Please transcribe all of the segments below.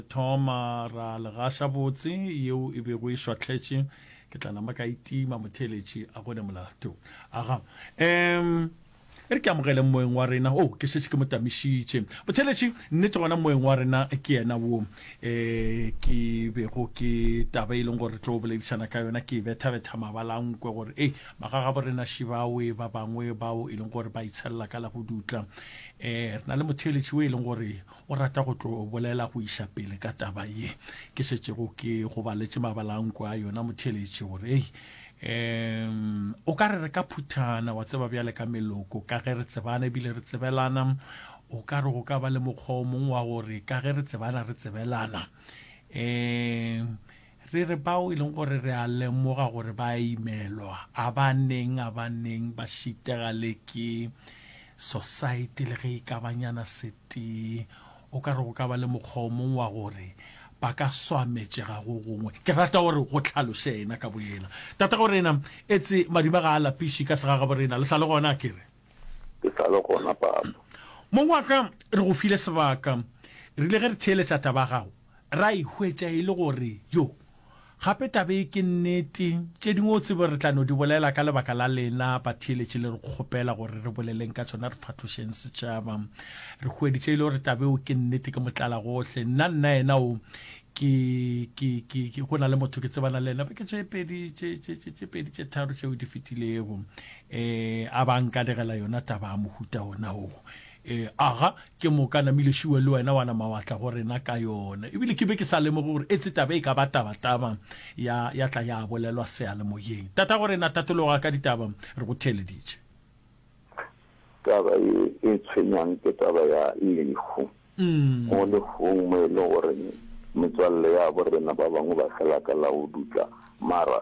Re thoma ra le gaša botse, yeo e bego e šwahletše. Ke tla nama ka itima motheeletši a gone molato. Aga. Em, e re ke amogele moeng wa rena. O, oh, ke šetše ke mo tamišitše. Motheeletši, nnete gona moeng wa rena ke yena wo. E, ke bego ke taba e leng gore re tlo boledišana ka yona, ke bethabetha mabalankwe gore, ei, magagabo rena šibawe ba bangwe bao e leng gore ba itshelela ka la go dutla. E, re na le motheeletši o e leng gore o rata go tlo bolela go iša pele ka taba ye ke šetšego ke go baletše mabalanko a yona motheletši gore ei um o ka re re ka phuthana wa tseba bjale ka meloko ka ge re tsebana ebile re tsebelana o ka re go ka ba le mokgwa o mongwe wa gore ka ge re tsebana re tsebelana um Re re bao e leng gore re a lemoga gore ba a imelwa, a ba neng a ba neng ba šitega le ke Sosaete le ge e ka ba nyana setee. O ka re go ka ba le mokgwa o mongwe wa gore ba ka swametšega go gongwe. Ke rata gore go tlhaloše yena ka boyena. Tatagoreena, etse madima ga a lapiše ka segagaborena, le sa le gona, a ke re? Ke sa le gona, Papa. Mong wa ka, re go file sebaka. Re ile ge re theeletša taba ya gago, ra e hwetša e le gore, yo, gape taba ye ke nnete. Tše dingwe o tsebe re tla no di bolela ka lebaka la lena batheeletši le re kgopela gore re boleleng ka tšona, re fahlošeng setšhaba. Re hweditše e le gore taba yeo ke nnete, ke motlalagohle. Nna, nna yena o, ke, ke, ke, ke, go na le motho ke tsebana le yena beke tše pedi, tše, tše, tše, tše pedi, tše tharo tšeo di fetilego. e a ba nkalegela yona taba ya mohuta ona o e aga ke moka namile šiwe le wena wana mawatla go rena ka yona ebile ke be ke sa lemoge gore etse taba e ka ba tabataba ya ya tla ya bolelwa seyalemoyeng tata go rena tatologa ka ditaba re go theeleditše taba e e tshwenyang ke taba ya lehu mm. mo lehung mo e le goreng metswalle ya borena ba bangwe ba fela ka la go dutla mara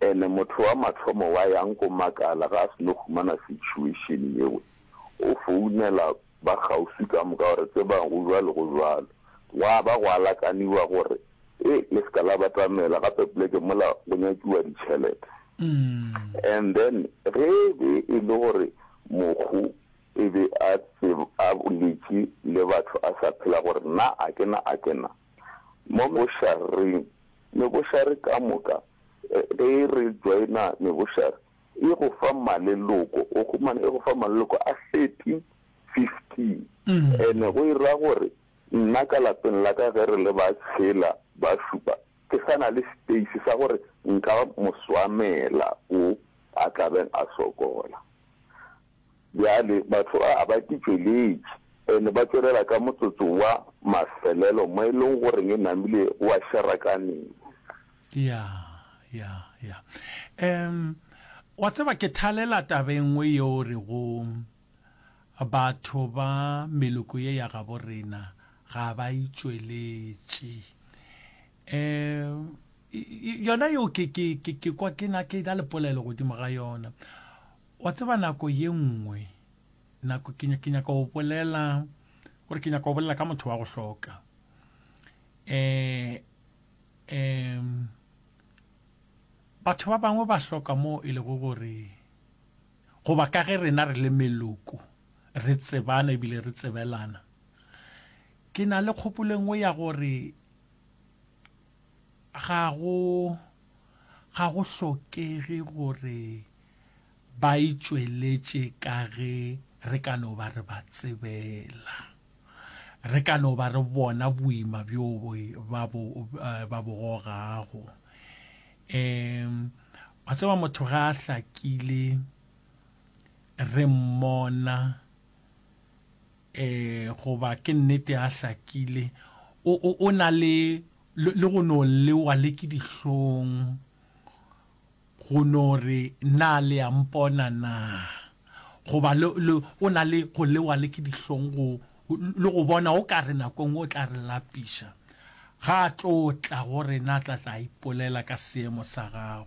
Ene motho wa mathomo wa yang ko makala ga a seno humana situation yeo, o founela ba kgauswi ka moka gore tsebang go jwalo go jwalo. Gwa ba gwa lakaniwa gore e le seka la batamela gape poleke mola go nyakiwa ditšhelete. And then ge e be e le gore mokgu e be a a boletše le batho a sa phela gore na a ke na a ke na, mo bošareng. Mebošare ka moka, ge e re joina mebošare, e go fa maleloko, o humana e go fa maleloko a thirty, fifteen. And-e go e ra gore nna ka lapeng la ka ge re le ba tshela, ba šupa, ke sa na le space sa gore nka mo swamela wo a tlabeng a sokola. Bjale, mahlo a a ba ke tšweletše, and ba tšwelela ka motsotso wa mafelelo, mo e lego gore e namile wa šarakaneng. Ya, ya, ya. Um, wa tseba, ke thalela taba e nngwe yeo o rego, Batho ba meloko ye ya gabo rena ga ba itšweletše. Um, yona yeo ke, ke, ke, ke kwa ke na, ke na le polelo godimo ga yona. Wa tseba nako ye nngwe, nako ke, ke nyaka go bolela, gore ke nyaka go bolela ka motho wa go hloka. Eh, em, batho ba bangwe ba hloka moo e lego gore, goba ka ge rena re le meloko, re tsebana ebile re tsebelana. Ke na le kgopolo e nngwe ya gore ga go, ga go hlokege gore, ba e tšweletše ka ge re ka no ba re ba tsebela. Re ka no ba re bona boima bjo ba bo, eh, ba bo gogago. Um wa tseba motho ga a hlakile re mmona eh goba ke nnete a hlakile o o o na le le go no lewa le ke dihlong Go no re, Na le a Mpona na? Goba, le, le, o na le go lewa le ke dihlong go, le go bona o ka re nako nngwe o tla re lapiša. Ga a tlo tla go rena, a tla tla a ipolela ka seemo sa gago.